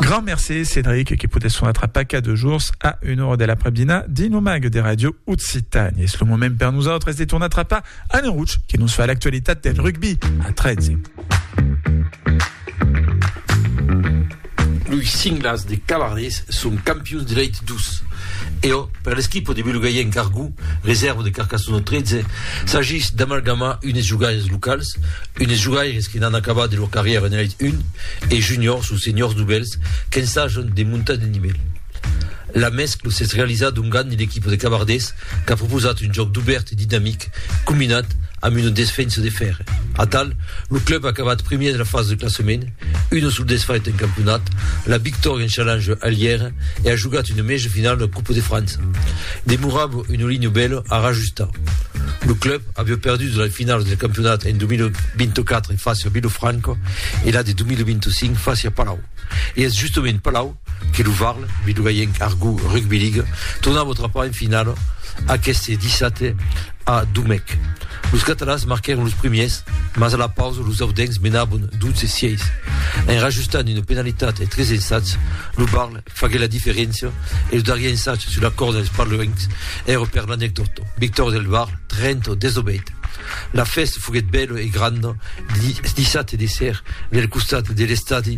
Grand merci Cédric qui pote son atra paca de jours a una hora de l'après-dina dins lo mag de Radio Occitanie. Es lo moment per nosaltres de tornar atrapar Anne Rouch qui nos fa l'actualitat del rugby a 13. Los cinglas de Cavardés son campions de l'Elite 12. E o, per l'equipo de Belogaienc Cargou, reserva de Carcassona 13, s'agís d'amalgamar unes jogaires locals, Un des jogaires que n'an acabat de lor carrièra en Elite 1 e Juniors o Seniors novèls qu'ensajan de montar de nivèl. La mèscla s'es realizada ongan l'equipa de Cavardés qu'a proposat un jòc dubèrt e dinamic combinat amb una desfensa de fèrre. Atal, lo club a acabat primièr de la fasa de classament, Una sul desfait en campionat, la victòria en challenge a Lièra e a jogat una mèja finala de Coupe de França. Demorava una linha bèla a rajustar. Lo club aviá perdut la finala del campionat en 2024 fàcia Vilofranca e la de 2025 fàcia Palau. E es justament Palau que lo Varl, Vidogayenc Argou Rugby League, tornava trapar en finala aqueste dissabte a Domècq. Los catalans marquèron los primiers, mas a la pausa los audencs menàvon 12-6. En rajustant una penalitat e tres ensats, lo Varl faguèt la diferéncia e lo darrier ensat sus la corda dels parloencs èra per l'anecdòta. Victòria del Varl 30-18. La fèsta foguèt bèla e granda dissabte de ser del costat de l'estadi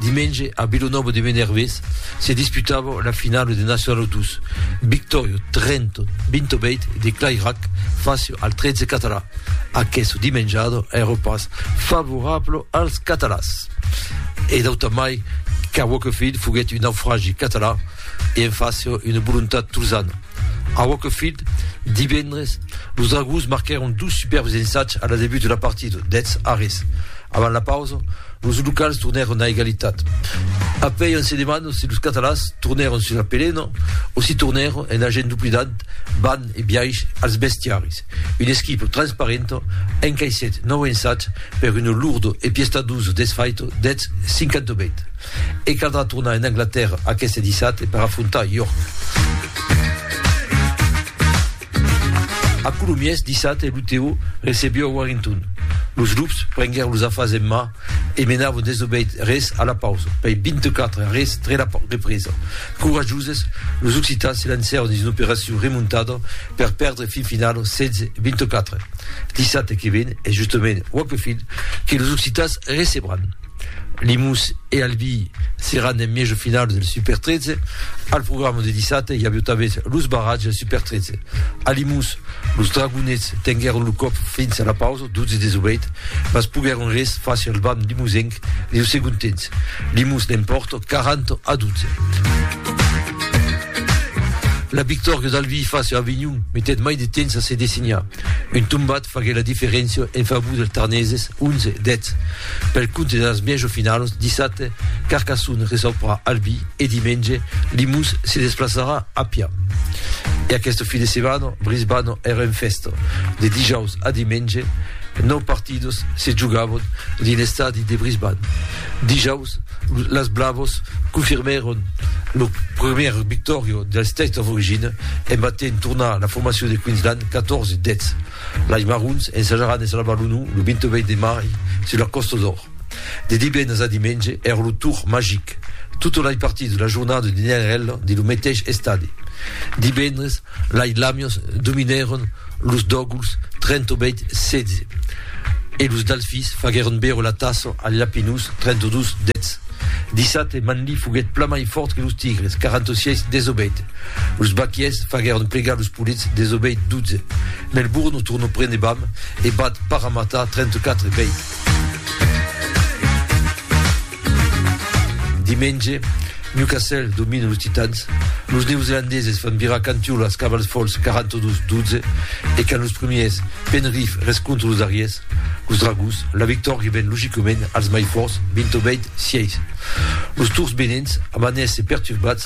Dimenge a Vilonòva de Menervés se disputava la finala de Nacional 2, victòria 30, 28 de Clairac fàcia al 13 català. Aquesta dimenjada èra pas favorabla als catalans. E d'auta mai qu'a Wakefield foguèt un naufragi català e en fàcia una volontat tolzana. A Wakefield, divendres, los Dragons marquèron dos superbs ensatges a la debut de la partida, dètz arrés avant la pausa, Los locals tornèron a egalitat. Apuèi on se demanda si los catalans tornèron sus la pelena o si tornèron en agent doblidant ban e biais als bestiaris. Una esquipa transparenta encaissèt nòu ensats per una lourda e piestadusa desfaita deth 58. E caldrà tornar en Anglatèrra aqueste dissabte per afrontar York. A Colomiers, dissabte, lo Teo recebió a Warrington. Los lups prenguèron los afars en man e menavon desobeït res a la pausa, pei 24 a res tre la represa. Corajoses, los occitans se lancèron dins una operacion remontada per perdre fin finala 16 a 24. Dissabte que ven es justament Wakefield que los occitans recebràn. Limús e Albi seràn en mièja finals del Super 13. Al programa de dissabte i aviá tanben los barratges del Super 13. A Limús, los Dragonets tenguèron lo còp fins a la pausa, 12-18, mas poguèron res fàsser al banc limusenc deu segond temps. Limús l'empòrta 40-12. La victòria d'Albi fàsser Avinhon metèt mai de temps a se dessenhar. Un tombat faguèt la diferéncia en favor dels Tarneses, 11-10. Pel compte dels mièg ofinalos, dissabte, Carcassonne recebrà Albi e dimenge, Limós se desplaçarà a Pià. E aquesta fin de setmana, Brisbane e Renfest. De dijaus a dimenge, nòu partidos se jogavon dins l'estadi de Brisbane. Dijaus, las Blavos confirmèron lo primièr victòria del State of Origin e matin tornar la formacion de Queensland 14 deths. Lais marrons ensajaràn de salvar lo nò lo 28 de mai sus la Còsta d'Or. De divendres a dimenge èra lo tour magic. Totes lais partits de la jornada dinèren ela dins lo meteis estadi. Divendres, lais Lamians dominèron los Dògols 38 16 e los Dalfis faguèron beure la tassa als Lapinós 32 10. Dissabte, Manlí foguèt plan mai fòrt que los Tigres 46 18. Los baquiers faguèron plegar los polits desobeit 12. Melbourne o tornò prene Bam e bat Parramatta 34 bèit. Dimenge, Newcastle domina los Titans, los neozelandeses fan virar cantiòla als Cavals Folhs 42 12 e quand los premiers Penrith rescontra los darriers, los Dragons, la victòria ven logicament als mai fòrts 20 bèit 6. Los Tours Benents amanèsse perturbats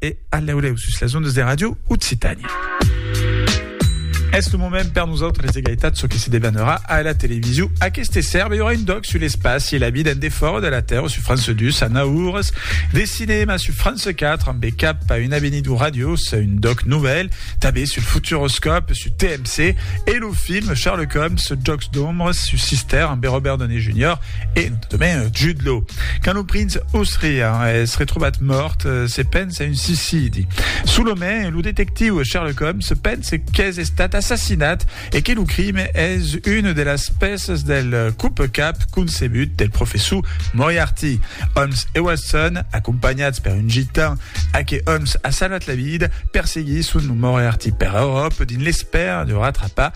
E alaulèu sus las ondas de Ràdio Occitània. Es lo moment per nosautres d'egalitat çò que se devanarà a la television. Aqueste serbe aurà un doc sur l'espaci e la vida en defòra de la Terra sur France 2 a 9 ores, de cinèma sur France 4 ambe cap a una venidor radiosa, un doc novèl, tanben sul futuroscòp sur TMC e lo film Sherlock Holmes, Jòcs d'ombres sur Sister ambe Robert Downey Junior. E demai, Jude Law. Quand lo prinç Osrian es retrobat mòrt, se pensa a un suicidi. Solament, lo detectiu Sherlock Holmes pense qu'es estat assassinat e que lo crime es una de las pèças del copecap concebut del professor Moriarty. Holmes e Watson, acompanhats per un gitan a que Holmes a salvat la vida, perseguisson lo Moriarty per Euròpa dins l'espèra de ratrapar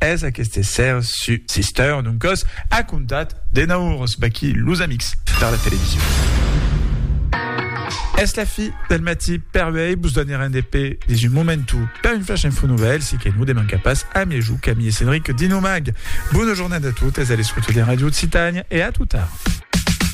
Es aqueste ser su Sister d'un còs a contat de naurs baquí los amics per la television. Es la fi del matí per uèi, vos donarem de pè dins un momentu per un flash info novèl, si que non de manca pas a mièjou Camille e Cédric dins lo mag. Bona jornada a totes a l'escouta de Radio Occitània e a tot ara.